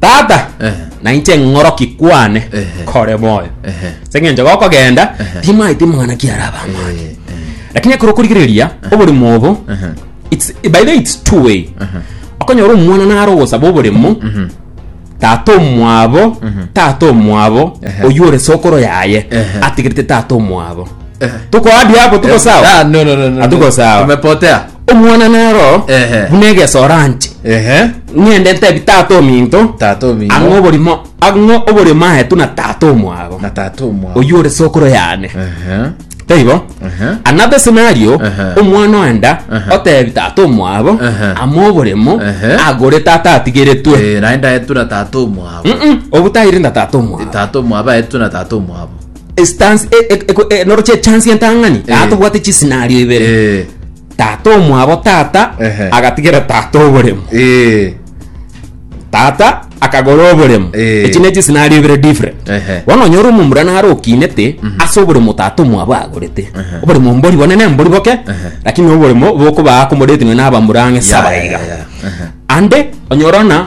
Tata, Ehe. nainche ng'oroki kwane Ehe. kore moyo. Ehe. Ase eng'encho gokogenda, Ehe. timaete mwana kiaraba amang'ana. Eh, eh, Lakini ekero okorigereria oborimo obo, Ehe. it's, by the way, it's two way. Ehe. Okonyora omwana naro ogosaba oborimo, mhm, tata omwabo, tata omwabo, Ehe. oywo ore sokoro yaye, Ehe. atigerete tata omwabo. eh. Tukoadia hapo, tuko sawa? Ah, no, no, no, no, no. Hatuko sawa. Tumepotea. Omwana nero Ehe. buna egesoro anche Ehe. ng'ende ntebi tata ominto Tata ominto. ang'e oborimo ang'e oborimo aetu na tata omwago Na tata omwao. oyio ore sokoro yane Ehe. taibo Ehe. another scenario Ehe. omwana oenda Ehe. otebi tata omwabo Ehe. ama oborimo Ehe. agore tata atigeretwe Eh, naye ndaetura tata omwabo. Mm-mm, obutairinda tata omwabo Tata omwabo aetura tata omwabo. Stance- e- e- eko- e- noro chie chance entang'ani Eh. aa tobwate chisinario ibere Eh, tata omwabo tata Ehe. agatigera tata oboremo eh, tata akagora oboremo Eh. echi ne chisinario ibere different Ehe. bono onyora omomura naro okinete ase oboremo tata omwabo agorete Ehe. oboremo mbori bone ne mbori boke Ehe. lakini oboremo bokobaa komoretinwe n'abamura ang'e ya, saba ya, iga ya, aha. ande onyorana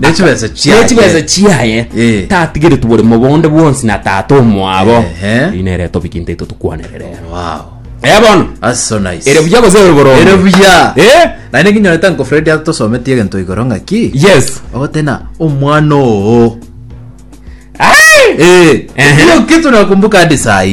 Ne chibesa chiaye. Ne chibesa chiaye Eh. tatigereti bore mobonde bwonsi na tata omwabo Ehe. rina ere tobiki nte ito tukwanere rero Wow. eh bono That's so nice. ere buya gose ere borongo Ere buya. eh Naende nginyorete Uncle Fred atosometie egento igoro ng'aki. yes Ogotena omwana oo. Ai! Eh. Ehe. Hiyo kitu nakumbuka hadi saa hii.